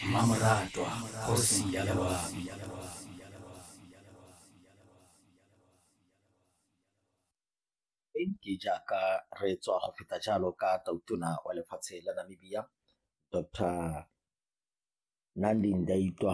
mmamoratwa kgosi ya loabi ke jaaka re tswa go feta jalo ka tautona wa lefatshe la namibia dr nandi ndaitwa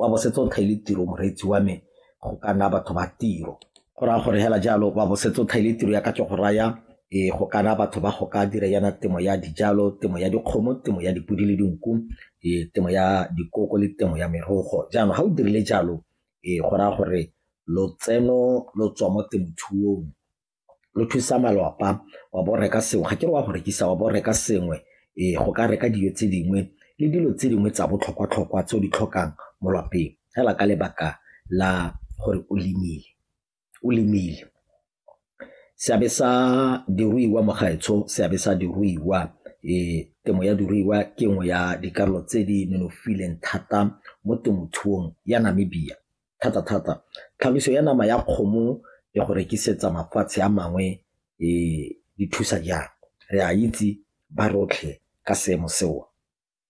wa bo setse o thaile tiro moreetsi wa me go ka nna batho ba tiro go raya gore hela jalo wa bo setse o thaile tiro ya ka ke go raya e go kana batho ba go ka dira yana temo ya dijalo temo ya dikgomo temo ya dipodi le dinku e temo ya dikoko le temo ya merogo jaanong ga o dirile jalo e go raya gore lotseno lo tswa mo temothuong lo thusa malwapa wa bo reka sengwe ga ke re wa go rekisa wa bo reka sengwe ee go ka reka dijo tse dingwe le dilo tse dingwe tsa botlhokwa-tlhokwa tse o di tlhokang mo lapeng fela ka lebaka la gore o lemile o lemile seabe sa diruiwa mo gaetsho seabe sa diruiwa um temo ya diruiwa ke nngwe ya dikarolo tse di nonofileng thata mo temothuong ya Namibia thata-thata tlhagiso ya nama ya kgomo ya go rekisetsa mafatshe a mangwe e thusa jang? Re a itse ba rotlhe ka seemo seo.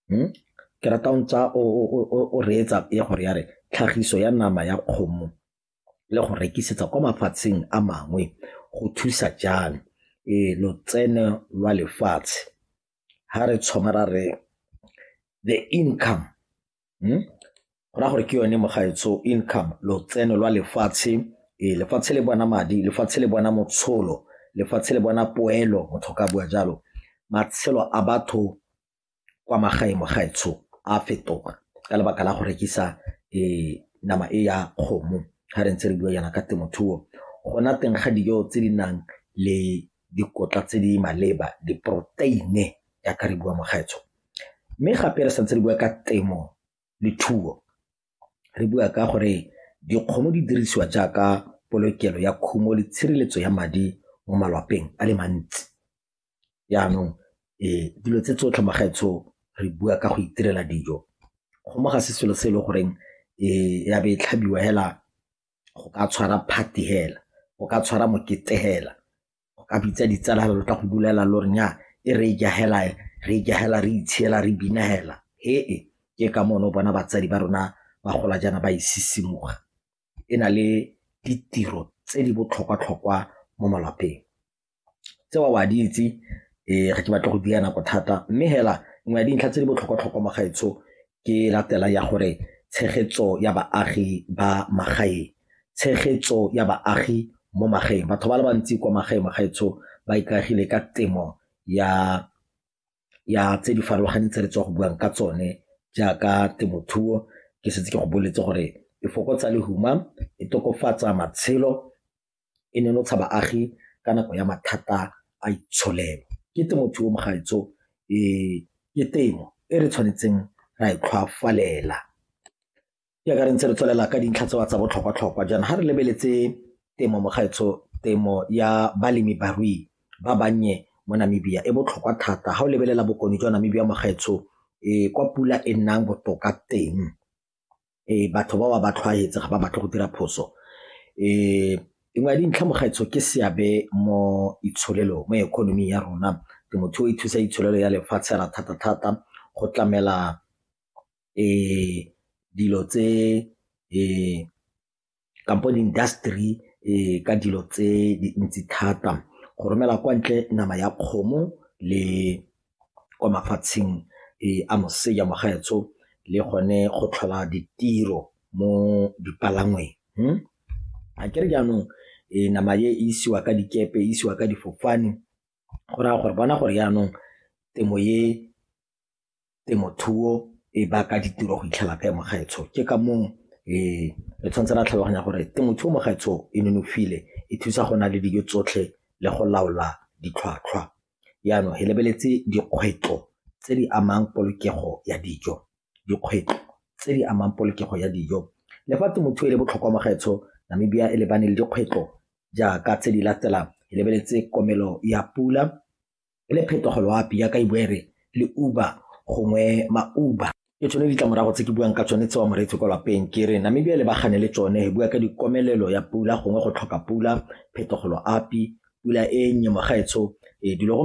Hm? Ke rata o ntsa o reetsa ya gore ya re tlhagiso ya nama ya kgomo le go rekisetsa kwa mafatsheng a mangwe go thusa jang e lotseno lwa lefatshe ha re tshwamara re the income go raya gore ke yone mogaetsho income, lotseno lwa lefatshe. Ee, lefatshe le bona madi, lefatshe le bona motsholo, lefatshe le bona poelo, motho a ka bua jalo. Matshelo a batho kwa magaeng mogaetsho a fetoga ka lebaka la go rekisa nama e ya kgomo ga re ntse re bua jaana ka temothuo, go nna teng ga dijo tse di nang le dikotla tse di maleba, diporoteine yaka re bua mokgaitsho. Mme gape re santse re bua ka temo le thuo, re bua ka gore dikgomo di dirisiwa jaaka polokelo ya khumo le tshireletso ya madi mo malwapeng a le mantsi. Jaanong dilo tse tsotlhe magaetsho re bua ka go itirela dijo, kgomo ga se selo se e le goreng ya be e tlhabiwa fela go ka tshwara party hela, go ka tshwara mokete hela, go ka bitsa ditsala hela lo tla go bulela lo re nyaa e re e ja hela e, re e ja hela re itshela re bina hela hee. Ke ka moo ne o bona batsadi ba rona ba gola jaana ba e sisimuga e na le ditiro tse di botlhokwa-tlhokwa mo malapeng. Tseo o a di itse, ee, ga ke batle go dula nako thata mme fela nngwe ya dintlha tse di botlhokwa-tlhokwa mo gaetsho ke e latelang ya gore tshegetso ya baagi ba magaeng, tshegetso ya baagi mo magaeng. Batho ba le bantsi kwa magaeng mo gaetsho ba ikaegile ka temo ya tse di farologaneng tse re tswa go buang ka tsone jaaka temothuo, ke setse ke go boletse gore e fokotsa lehuma, e tokafatsa matshelo. e nonotsha baagi ka nako ya mathata a itsholelo. Ke temothuo mogaetsho ke temo e re tshwanetseng ra e tlhwafalela jaaka re ntse re tswelela ka dintlha tse wa tsa botlhokwa-tlhokwa jaana ga re lebeletse temo mogaetsho temo ya balemi barui ba bannye mo Namibia e botlhokwa thata ga o lebelela bokone jwa Namibia mogaetsho kwa pula e nnang botoka teng. batho ba ba ba tlhwaetse ga ba batle go dira phoso nngwe ya dintlha mokgaitsho ke seabe mo itsholelo mo economy ya rona temothuo e thusa itsholelo ya lefatshe la thata-thata go tlamela dilo tse kampo di-industry um ka dilo tse dintsi thata go romela kwa ntle nama ya kgomo le kwa mafatsheng um a moseja mogaetsho le gone go tlhola ditiro mo dipalangweng hmm? a kere jaanong um nama e isiwa ka dikepe isiwa ka difofane go raya gore bona gore jaanong temo e temothuo e baka ditiro go itlhela kae mo gaetsho ke ka moo um re tshwanetse ra tlhaloganya gore temothuo mo gaetsho e nonofile e thusa go na le dijo tsotlhe le go laola ditlhwatlhwa jaanong re lebeletse dikgwetlho tse di amang polokego ya dijo dikgwetlho tse di amang polokego ya dijo le fa temothuo e le botlhokwa mo gaetsho Namibia e lebane le dikgwetlho jaaka tse di latelang e lebeletse komelo ya pula le phetogo loapi yaka e bua e re le Uber gongwe ma-Uber. Ke tsone ditlamorago tse ke buang ka tsone tsewa moreetsi kwa lapeng ke re Namibia le bagane le tsone e bua ka dikomelelo ya pula gongwe go tlhoka pula phetogo loapi pula e nnye mogaetsho e dilo